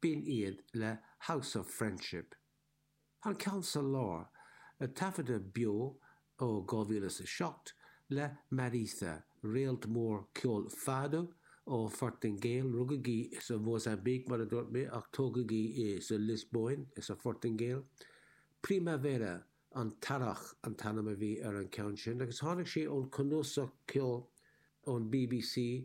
B'in iad le House of Friendship. An ceann sa lár, taifeadadh beo ó 2007 le Mariza, réalt mór ceoil Fado ón Phortaingéil, rugadh í sa Mhósaimbíc mar a dúirt mé ach tógadh í insa Liospóin insa Phortaingéil. Primavera, An tEarrach, an t-ainm a bhí ar an ceann sin agus tháinig sé ón cnuasach ceoil ón BBC,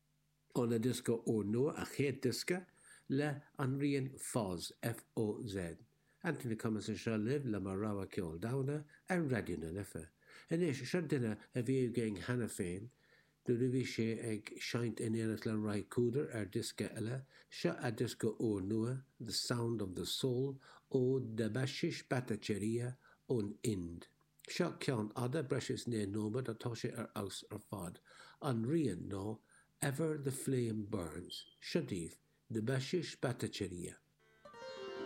Óna diosca úrnua, a chéad diosca leis an rian Foz, F-O-Z. Anthony Cummins anseo libh le mo rogha ceol domhanda ar Raidió na Life. Anois, seo duine a bhí againn cheana féin nuair a bhí sé ag seinnt in éineacht le Ry Cooder ar diosca eile, seo a diosca úrnua, The Sound of the Soul, ó Debashish Bhattacharya ón Ind. Seo ceann fada, breis is naoi nóiméad, atá sé ar fheabhas ar fad. An rian ná Ever the Flame Burns. Seo daoibh, Debashish Bhattacharya.